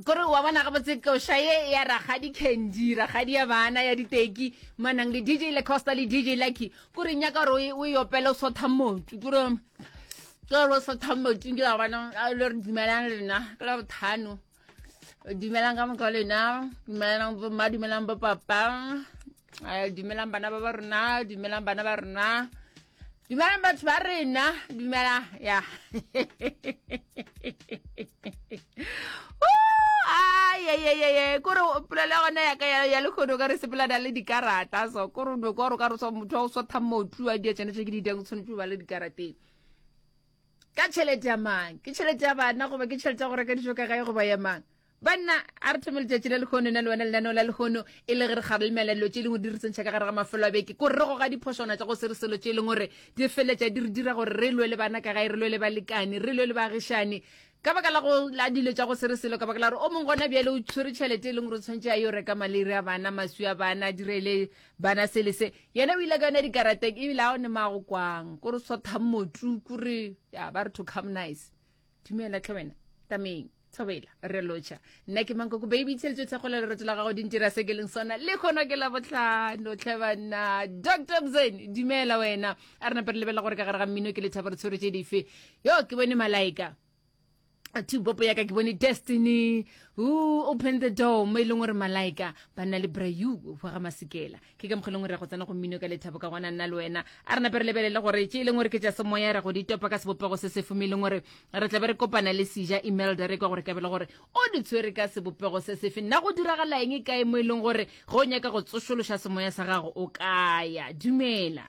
kore wa bona ga botse koša ye ya ragadi candy ragadi ya bana ya diteki manang le dj le costa le dj lucky kore nyaka gore o e opele o sotha motu kore kore o sotha motu ke bona le re dumelang lena ke la bothano dumelang ka moka lena dumelang bomma dumelang bo papa eh, dumelang bana ba ba rona dumelang bana ba rona dumelang batho ba rena dumela ya ayeyeyeye kore polelo gona yaka ya lekgono ka re sepelana le dikarata so kore no ka gore ka re so motho wa go swatha motlu a dia tsenetse ke didang o tshwanetse o ba le dikarateng ka tšhelete ya mang ke tšhelete ya bana goba ke tšhelete ya go reka dijo ka gae goba ya mang Banna, a re thome letšatši la lehono, na le wena lenaneo la lehono, e le ge re kgarelemela dilo tše lengwe di re tsentšha ka gare ga mafelo a beke, ko re goga diphošwana tša go se re selo tše leng gore di feletša di re dira gore re lwe le bana ka gae, re lwe le balekane, re lwe le baagišani, ka baka la go la dilo tša go se re selo, ka baka la gore o mong gona bjale o tshwere tšhelete e leng gore o tshwanetse a yo reka maleiri a bana, maswi a bana, a direle bana se le se. Yena o ile ka yona dikarateng, ebile a o ne maa go kwang, ko re swathang motu, ko re, ya ba re to come nice. dumela tlhe wena tameng thobela re lotšha nna ke mankoko baby tsheletse thekgo le lereto la gago di ntira se ke leng sona le kgona ke la botlhano tlhe banna dr bzen dumela wena a re nape re lebelela gore ka gare ga mmino ke lethabo re tshwere tse dife yo ke bone malaika two bopo yaka ke bone destiny who open the door mo e leng gore malaika ba nna le brayu wa ga masekela ke ka mokgwa e leng gore ya go tsena go mmino ka lethabo ka gona nna le wena a re nape re lebelele gore tše e leng gore ke tša semoya ra go di topa ka sebopego se se fome e leng gore re tlabe re kopana le seja imelda re kwa gore ka bele gore o di tshwere ka sebopego se sefe nna go diragalaeng e kae mo e leng gore ge o nyaka go tsošološa semoya sa gago o kaya dumela